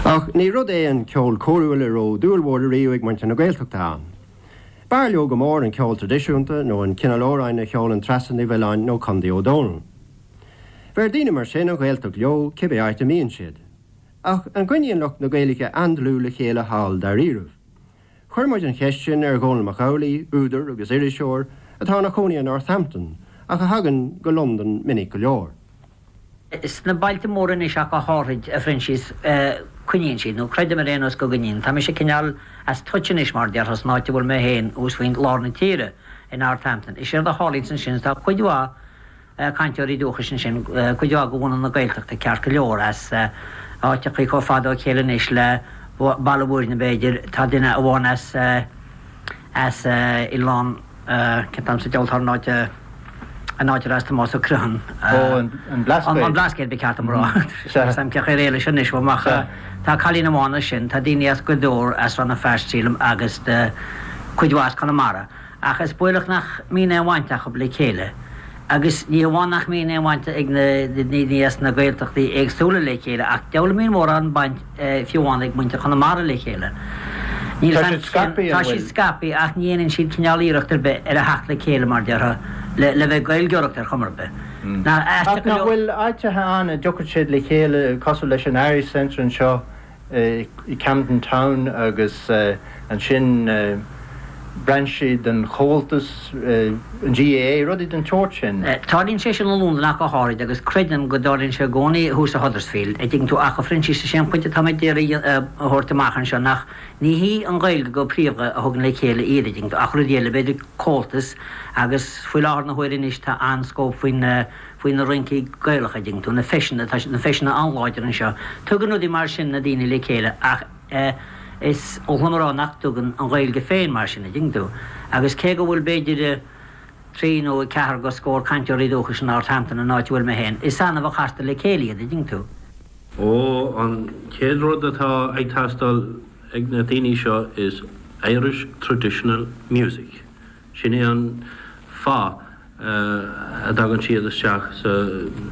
Ach ní rud é an ceol cóirithe a raibh dúil mhór ariamh ag muintir na Gaeltachta ann. B'fhearr leo go mór an ceol traidisiúnta nó an cineál amhráin a cheolann Treasa Ní Mhiolláin nó Condaí Ó Dónaill. Bheir daoine mar sin an Ghaeltacht leo, cibé áit a mbíonn siad. Ach an gcoinníonn lucht na Gaeilge an-dlúth le chéile thall, dáiríribh? Chuir muid an cheist sin ar Dhónall Mac Amhlaigh, údar agus iriseoir atá ina chónaí i Northampton ach a thagann go Londain minic go leor. Sna bailte móra anois ach go háirid, a Phroinsias, coinníonn siad, nó creidim ar aon nós go gcoinníonn. Tá mise cineál as touch anois, mar a déarfá, san áit a bhfuil mé féin, thuas faoi lár na tíre, i Northampton. Is éard a tharlaíonns ansin is tá cuid mhaith, cainteoirí dúchais ansin, cuid de bhunadh na Gaeltachta ceart go leor, as áiteachaí chomh fada ó chéile anois le Baile Mhúirne b'fhéidir, tá duine amháin as, as oileán, cén t-ainm sa diabhal atá ar an áit, an áit ar as Tomás Ó Criomhthain. Ó, an Blascaod. An Blascaod ba cheart dom a rá. Sea. Is iomaí áiteachaí eile ansin anois, ach. Sea. Tá cailín amháin ansin, tá daoine as go leor as Rann na Feirste sílim agus cuid mhaith as Conamara. Ach is baolach nach mbíonn aon bhaint acu le chéile. Agus ní hamháin nach mbíonn aon bhaint ag na daoine as na Gaeltachtaí éagsúla le chéile, ach diabhal a mbíonn mórán baint fiú amháin ag muintir Chonamara le chéile. Níl Tá siad scaipthe, an Tá bhfuil? siad scaipthe ach ní dhéanann siad cineál iarracht ar bith ar a theacht le chéile, mar a déarfá, le, le bheith ag Gaeilgeoireacht ar chuma ar bith. Nach aisteach Ach go nach leor? bhfuil áiteacha ann a dtiocfaidh siad le chéile, cosúil leis an Irish Centre anseo i gCamden Town agus ansin brainsí den Chomhaltas, an GAA, rudaí den tsórt sin. Tarlaíonn sé sin i Londain ach go háirid agus creidim go dtarlaíonn sé i gcónaí thuas i Huddersfield, a' dtuigeann tú, ach, a Phroinsias, is é an pointe atá mé ag iarraidh a thabhairt amach anseo nach, ní hí an Ghaeilge go príomha a thugann le chéile iad, a' dtuigeann tú, ach rudaí eile, b'fhéidir Comhaltas agus faoi láthair na huaire anois tá an-scóip faoin faoi na rincí Gaelacha, a' dtuigeann tú, na feiseanna, tá na feiseanna an-láidir anseo, tugann rudaí mar sin na daoine le chéile ach is oth liom a rá nach dtugann an Ghaeilge féin mar sin, a' dtuigeann tú, agus cé go bhfuil b'fhéidir trí nó ceathair de scór cainteoirí dúchais i Northampton, an áit a bhfuil mé féin, is annamh a chastar le chéile iad, a' dtuigeann tú. Ó, an chéad rud atá ag teastáil ag na daoine seo is Irish Traditional Music. Sin é an fáth a dtagann siad isteach sa.